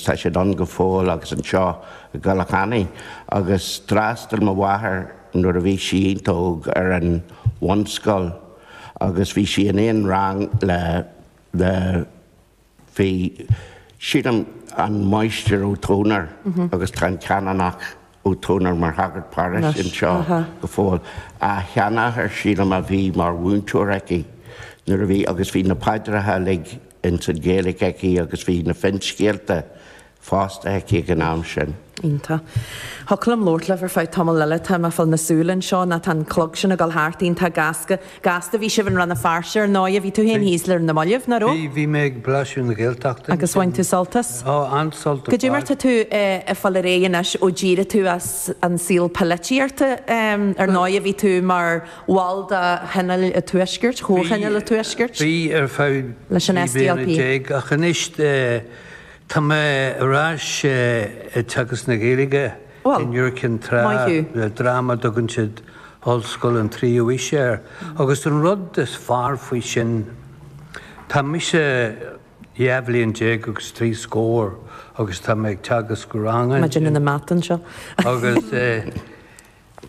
Tá siad ann go fóill agus anseo i gCoilleach Eanaigh agus d'fhreastail mo mháthair nuair a bhí sí iontach óg ar an bhunscoil agus bhí sí in aon rang le, le, bhí, sílim, an Máistir Ó Tomhnair agus tá an Canónach Ó Tomhnair mar shagart paróiste anseo go fóill. A sheanathair, sílim, a bhí mar mhúinteoir aici nuair a bhí agus bhí na paidreacha uilig in san Ghaeilge aici agus bhí na finscéalta fosta aici ag an am sin. Iontach. Thiocfadh liom labhairt libh ar feadh tamaill eile. Tá mé ag fáil na súile anseo ná tá an clog sin ag dul thart iontach gasta. Gasta. Bhí sibh i Rann na Feirste ar ndóigh, bhí tú féin thíos le Rinn na mBailbh, nach raibh? Bhí, bhí mé ag blaiseadh na Gaeltachta ansin. Agus bhain tú sult as? Ó, an-sult ar fad. Cad é mar tá tú ag fáil ar aghaidh anois ó d'éirigh tú as an saol polaitíochta ar ndóigh, bhí tú mar bhall de Thionól a' Tuaiscirt, Chomhthionól a' Tuaiscirt? Bhí, bhí ar feadh trí bliana déag ach anois tá mé ar ais ag teagasc na Gaeilge. in Iúr Cinn Trá le dream a dtugann siad Ollscoil an Tríú Aois air agus an rud is fearr faoi sin, tá mise dhá bhliain déag agus trí scór agus tá mé ag teagasc ranga ansin. Maidin ina meat anseo. Agus.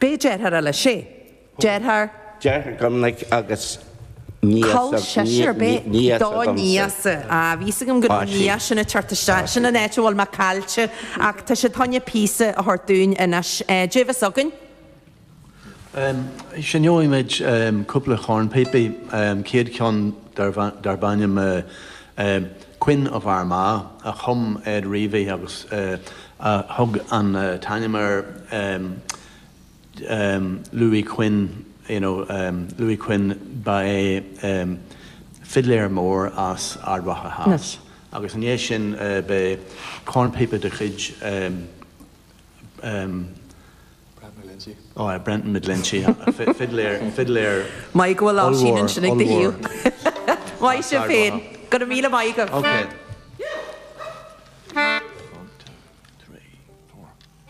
B'é deartháir eile Shea, deartháir. deartháir Dhoimnic agus Col seisear b'é Nia-sa do dhomsa. Nia-sa. Á, bhí fhios agam go raibh Nia sin ag teacht isteach. Sin an áit a bhfuil mé caillte. Ach tá siad tagine píosa a thabhairt dúinn anois. Cad é a bheas againn? Seinnfimid cúpla cornphíopaí, chéad cheann darb ainm é Quinn of Armagh a chum Ed Reavy é agus a thug an t-ainm ar Louis Quinn you know Louis Quinn ba é fidléir mór as Ard Mhacha Theas agus i ndiaidh sin beidh cornphíopa de chuid Brenton McGlinchey, fidléir ollmhór.